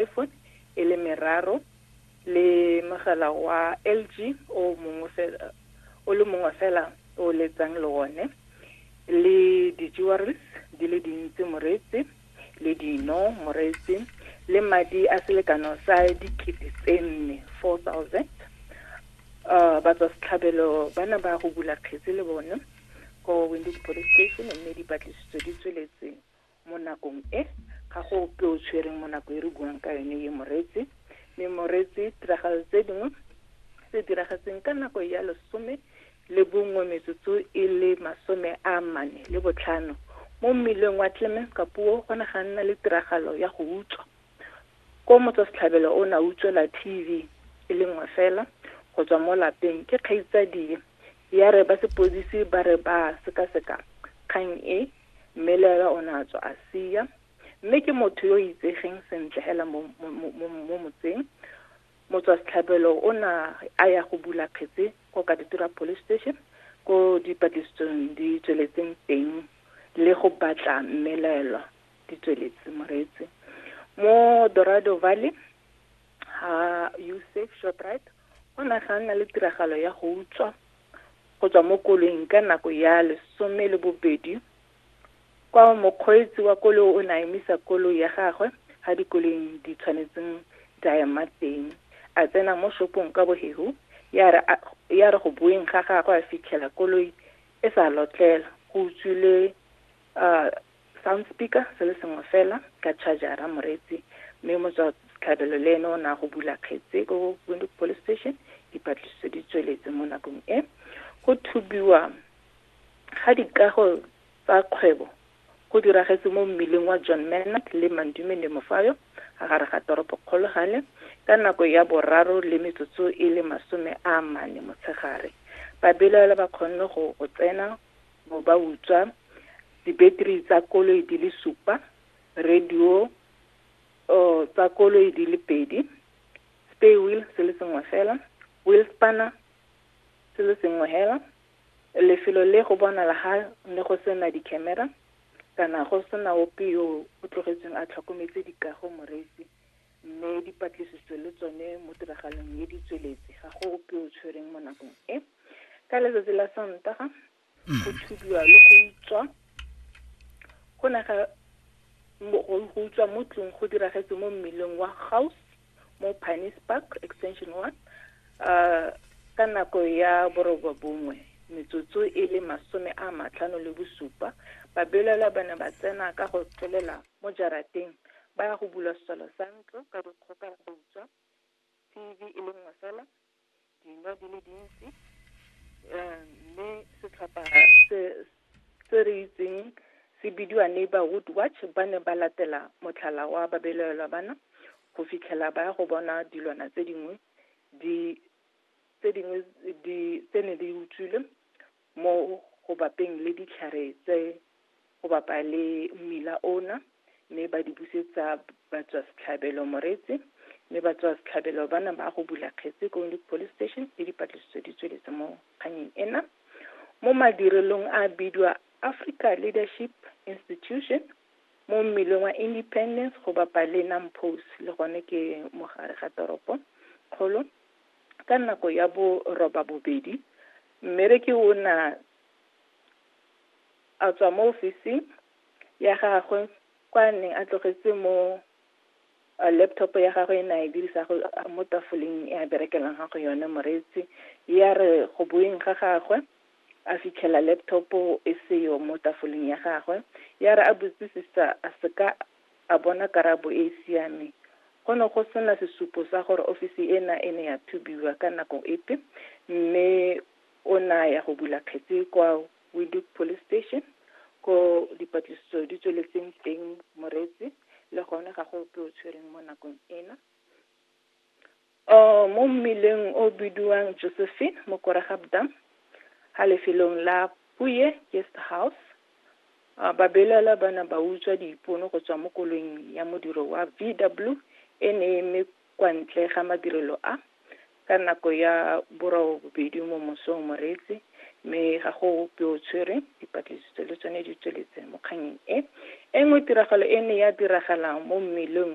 iPhone e le meraro le mogala wa LG o mongwe fela o le mongwe fela o letsang le one le di-jewelries di le dintsi moreetsi le dino moreetsi le madi a selekano sa dikete tse nne four thousand um batswa setlhabelo ba ne ba go bula kgetse le bone ko winded police station mme dipatlisitso di tsweletseng Mo nakong e, ga go ope o tshwereng mo nako e re buang ka yone e Moreetsi, mme Moreetsi tiragalo tse dingwe tse diragetseng ka nako ya lesome le bongwe metsotso e le masome a mane le botlhano mo mmileng wa Clemens Kapuo go ne ga nna le tiragalo ya go utswa. Koo motswasetlhabelo o ne a utswela TV e le nngwe fela go tswa mo lapeng ke kgaitsadie. Ya re ba sepodisi ba re ba sekaseka kgang e, mme le ena o ne a tswa a sia. Mme ke motho yo o itsegeng sentle hela mo, mo, mo, mo, mo motseng. Motswasetlhabelo o ne a ya go bula kgetse ko Katutura Police Station, ko dipatlisitsong di tsweletseng teng le go batla mmelaelwa di tsweletse moreetsi mo dorado valley ha usef shoprite go ne ga nna le tiragalo ya go utswa go tswa mo koloing ka nako ya lesome le bobedi kwa mokgweetsi wa koloi o ne a emisa koloi ya gagwe ga dikoloi di tshwanetseng di a ema teng a tsena mo shopong ka boheu ya re a- ya re go boeng ga gagwe a fitlhela koloi e sa lotlela go utswile ah, Sound speaker se le sengwe fela ka charger-a moreetsi mme motswa setlhabelo le ene o ne a go bula kgetse ko Windhoek Police Station dipatlisiso di tsweletse mo nakong e go thubiwa ga dikago tsa kgwebo go diragetse mo mmileng wa John Menard le Mandume le Mofayo a gare ga toropo kgologale ka nako ya boraro le metsotso e le masome a mane motshegare babelaela ba kgonne go go tsena bo ba utswa dibeteri tsa koloi di le supa radio tsa koloi di le pedi spare wheel se le sengwe fela wheel spanner se le sengwe fela lefelo le go bonala ga ne go sena di-camera kana go sena ope yo o tlogetsweng a tlhokometse dikago moreetsi mme dipatlisiso le tsone mo tiragalong e di tsweletse ga go ope o tshwereng mo nakong e ka letsatsi la sontaga go thubiwa le go utswa go ne ga mo- go go utswa mo tlong go diragetse mo mmileng wa house mo pines park extension one um ka nako ya boroba bongwe metsotso e le masome a matlhano le bosupa babelaelwa ba ne ba tsena ka go tlolela mo jarateng ba ya go bula selo sa ntlo ka dikgoka ba utswa tv e le nngwe fela dino di le dintsi um mme setlhopha se se re itseng se bidiwa neighborhood watch ba ne ba latela motlhala wa babelaelwa bana go fitlhela ba ya go bona dilwana tse dingwe di tse dingwe di tse ne di utswile Mo go bapeng le ditlhare tse go bapa le mmila ona, mme ba di busetsa batswasetlhabelo Moretse, mme batswasetlhabelo ba na ba go bula kgetse ko Windhoek Police Station le dipatlisiso di tsweletse mo kganyeng ena. Mo madirelong a bidwa Africa Leadership Institution mo mmileng wa Independence go bapa le Nampos le gone ke mogare ga toropo kgolo ka nako ya bo roba bobedi Mmereki o na a tswa mo ofising ya gagwe kwa a neng a tlogetse mo laptop ya gagwe e ne a e dirisa go mo tafoleng e a berekelang ga go yone moreetsi ya re go boeng ga gagwe a fitlhela laptop e seyo mo tafoleng ya gagwe ya re a botsisisa a seka a bona karabo e e siameng. Go ne go sena sesupo sa gore ofisi ena e ne ya thubiwa ka nako epe mme o ne a ya go bula kgetse kwa Windhoek Police Station ko dipatlisiso di tsweletseng teng Moreetsi le gone ga go ope o tshwereng mo nakong ena. Oh, mo mmileng o bidiwang Josephine mo Koregabdam, ha lefelong la Puye Guest House, uh, babelaelwa ba ne ba utswa diipono go tswa mo koloing ya modiro wa VW e ne e eme kwa ntle ga madirelo a ka nako ya borobedi mo mosong moreetsi mme ga go ope o tshwereng dipatlisiso le tsone di tsweletse mo kganyeng e e nngwe tiragalo e ne ya diragala mo mmeleng